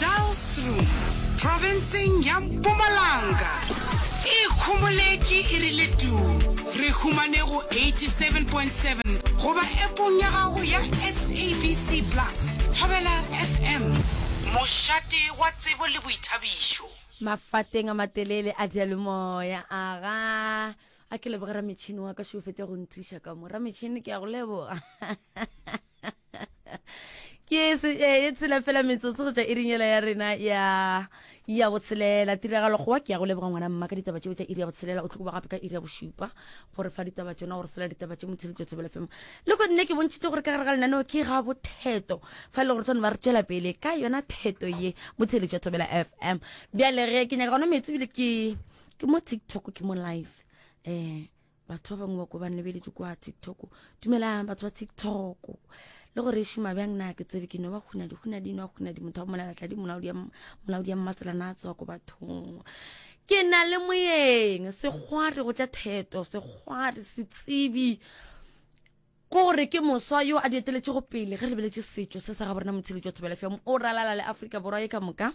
Dalstrom profenseng ya Mpumalanga e ikhomoletše e rile tu. Re humane go 87.7 goba appong ya gago ya SABC Plus, Thobela FM, mošate wa tsebo le boithabišo. Mafateng a matelele a diyalemoya aga a ke leboge rametšhini wa ka šofete go nthuša ka mo rametšhini ke ya go leboga ke e tsela fela metsotso go tšwa irinyela ya rena ya ya botshelela tiragalo gowa ke ya go leboga ngwana mma ka ditaba tšeo tša iri ya botshelela o tlo gape ka iri ya bošupa gore fa ditaba tsona gore sela ditaba tše motsheletso tsebele fema le go nne ke bontšhitse gore ka gare ga lenaneo ke ga botheto fa e le gore tlhone ba re tšwela pele ka yona theto ye motsheletso tsebela f m bjalege ke nyaka gona metsi bile ke ke mo tiktok ke mo live um batho ba bangwe ba ko ba lebeletše kwa tiktok dumelang batho ba tiktok le gore e šoma bjang na ke tsebe ke no ba kgona dikgona dino a kgona di motho wa molalatla di molaodi ya mmatselana a tswa ko bathong ke na le moyeng sekgware go tša theto sekgware setsebi Ke gore ke moswa yo a di eteletšego pele ge re lebeletše setšo se sa gabo rena Motshedi Tšo Thobela FM o ralala le Afrika Borwa ye ka moka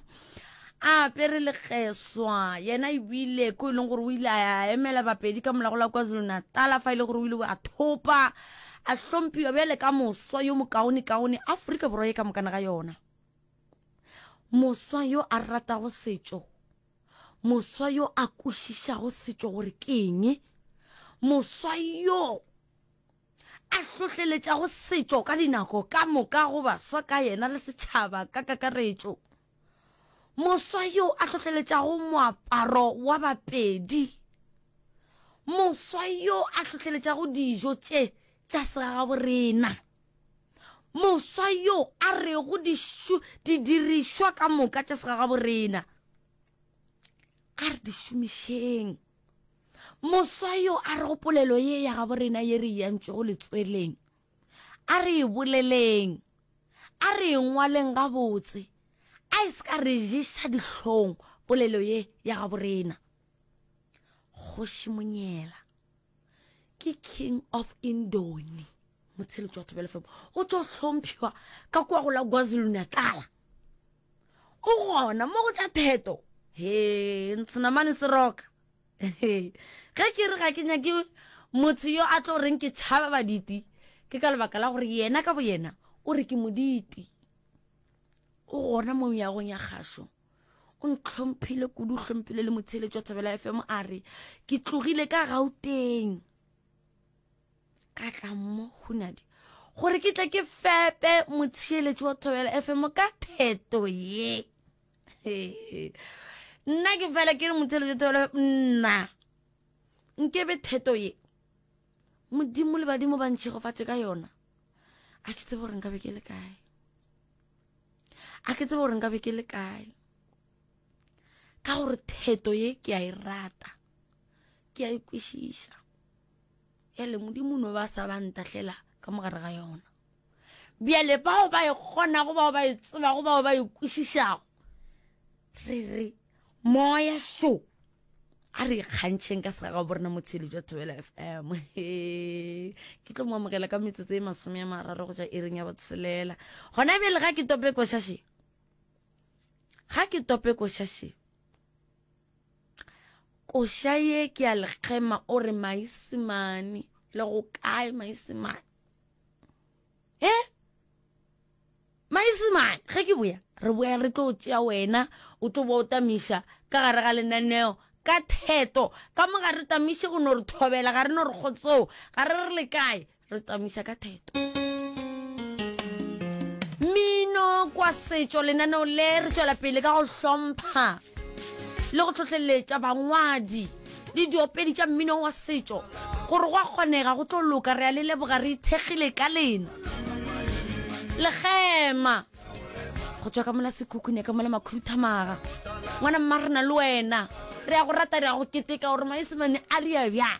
a apere lekgeswa yena ebile ko e leng gore o ile a emela bapedi ka molago la kwazulu natala fa e le gore o ile a thopa a hlompiwa bjale ka moswa yo mokaone kaone aforika borwa ye ka mokana ga yona moswa yo a ratago setšo moswa yo a kwešišago setšo gore ke eng moswa yo a hlohleletšago setšo ka dinako ka moka go baswa ka yena le setšhaba ka kakaretšo. Moswa yo a hlohleletšago moaparo wa Bapedi. Moswa yo a hlohleletšago dijo tše tša segagaborena. Moswa yo a rego dišu, didirišwa ka moka tša segagaborena a re di šomišeng. Moswa yo a re go polelo ye ya gabo rena ye re yantšwego letsweleng, a re e boleleng, a re e ngwaleng gabotse, a e se ka re ješa dihlong polelo ye ya gabo rena. Kgoši Monyela ke King of Indoni. motsheletši wa thobelefemo o tlo hlomphiwa ka kwa go la kwazulu-natala o gona mo go tsa theto he ntshenamane se roka ge ke re ga ke nyake motho yo a tlo reng ke tšhaba baditi ke ka lebaka la gore yena ka boyena o re ke moditi o gona mo yagong ya gašo o ntlhomphile kudu o hlomphile le motsheletšo thobela fm a re ke tlogile ka gauteng ka tla mo hunadi gore ke tle ke fepe motheeletši wa thobela fm ka theto ye nna ke fela ke re motheeletši wa thobela nna nkebe theto ye modimo le badimo ba ntšhegofatše ka yona a ke tsebe gore nka be ke le kae a ke tsebe gore nka be ke le kae ka gore theto ye ke a e rata ke a e kwešiša bjale modimo no ba sa ba ntahlela ka mogare ga yona bjale bao ba e kgonago bao ba e tsebago bao ba e kwešišago re re moya so a re ikgantšheng ka sega bo rena motshedi jwa thobela f m ke tlo mo amogela ka metsotso e masome ya mararo go ja e reng ya botshelela gona bjale ga ke tope košaše ga ke tope košaše koša ye ke ya lekgema o re maisemane le go kae maisemane e eh? maisemane ge ke boya re boya re tlo tšea wena o tlo bo o tamiša ka gare ga lenaneo ka theto ka mo ga re tamiše go no re thobela ga re no re kgotsoo ga re re le kae re tsamisa ka theto mmino kwa setšo lenaneo le re tšwela pele ka go hlompha le go tlhotlheletša bangwadi le diopedi tša mmino wa setšo gore go a kgonega go tlo loka re a le leboga re ithekgile ka lena legema go tswa ka mola sekhukhune ka mola makhuduthamaga ngwana mma re na le wena re ya go rata re ya go keteka gore maesemane a ria bjang